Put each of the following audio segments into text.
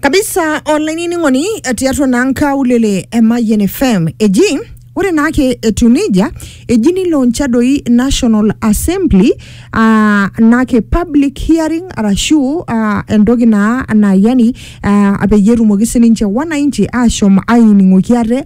kabisa olainining'oni tiatua naa nkaulele e Mayian FM eji ore naake etiu nejia eji nilauncha doi National Assembly aa naake public hearing arashu aa entoki naa naa yani aa peyie etumoki sininche wananchi ashom ainining'oki ate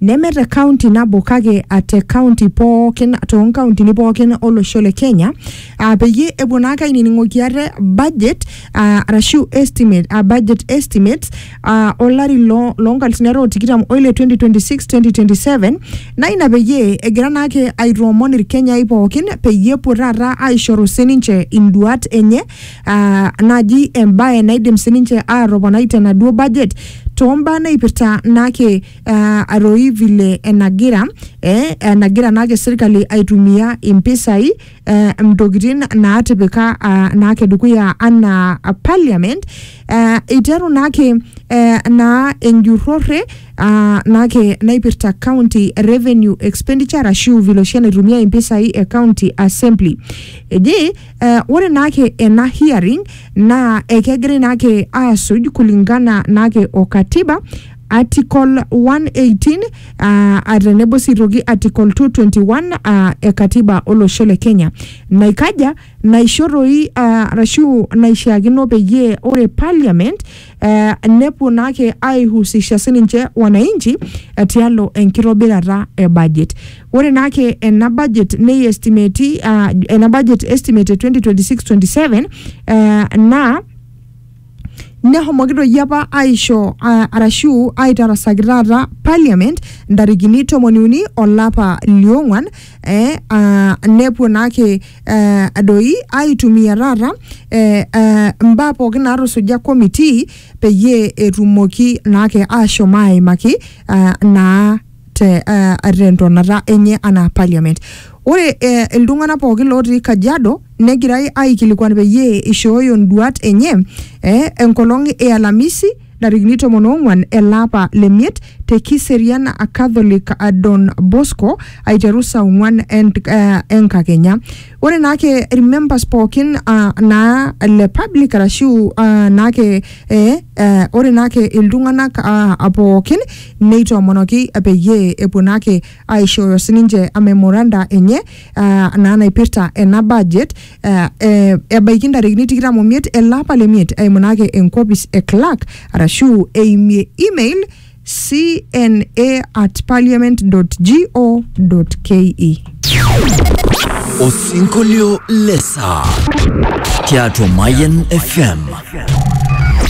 neme te kaunti nabo kake a te kaunti pookin too nkauntini pookin olosho le Kenya aa peyie epuo naa ake ainining'oki ate budget aa arashu estimate aa budget estimates aa olari loo loo nkalisuni are o tikitam oile 2026-2027 naa ina peyie egira naa ake aitoomon irkenyai pookin peyie epuo taata aishoru sininche induat enye aa naaji embae naidim sininche aatoponai tenaduo budget toombaa naipirta naake eh, aroi vile enagira eh, enagira naake sirkali aitumia impisai eh, ntokitin naatipika ah, naake dukuya anaa ah, parliament eh, iteru naake eh, naa enjurrore ah, naake naipirta county revenue expenditure ashu vile oshi enaitumia impisai e county assembly eji eh, ore naake ena hearing naa ekegirai naake aasuj kulingana naake o katiba Article 118 aa a tenebo sii aitoki Article 221 aa e Katiba olosho le Kenya naikaja naisho toi aa arashu naishiakino peyie ore Parliament ee nepuo naake aihusisha sininche wananchi tialo enkitobirata e budget. Ore naake ena budget neiestimeti aa ena budget estimate e 2026/27 ee naa Nehomoki doi apa aisho a, arashu aitarasaki taata parliament ntarikini tomoni uni olapa liong'wan eh, ah, nepuo naake eh, doi aitumia taata eh, eh, mbaa pookin naatusuja committee peyie etumoki naake ashom aimaki ah, naa te uh, tentonata enye anaa parliament ore eh, iltung'anak pookin lootii kajiado negirai aikilikuan peyie ishooyo nduat enye eh, enkolong e alamisi ntarikini tomon oong'uan ele apa le miet te kiserian catholic eh, don bosco aiteru saa ong'uan ent- eh, enkakenya ore naake irmembers pookin uh, naa le public arashu uh, naake eh, eh, ore naake iltung'anak uh, pookin Neitoomonoki peyie epuo naake aishooyo sininche memoranda enye uh, naa naipirta ena budget uh, eh, ebaiki ntarikini tikitam omiet ele apa le miet eimu naake enkopis e clerk arashu eimie email cna at parliament go ke Osinkolio lesaa tiatua Mayan FM.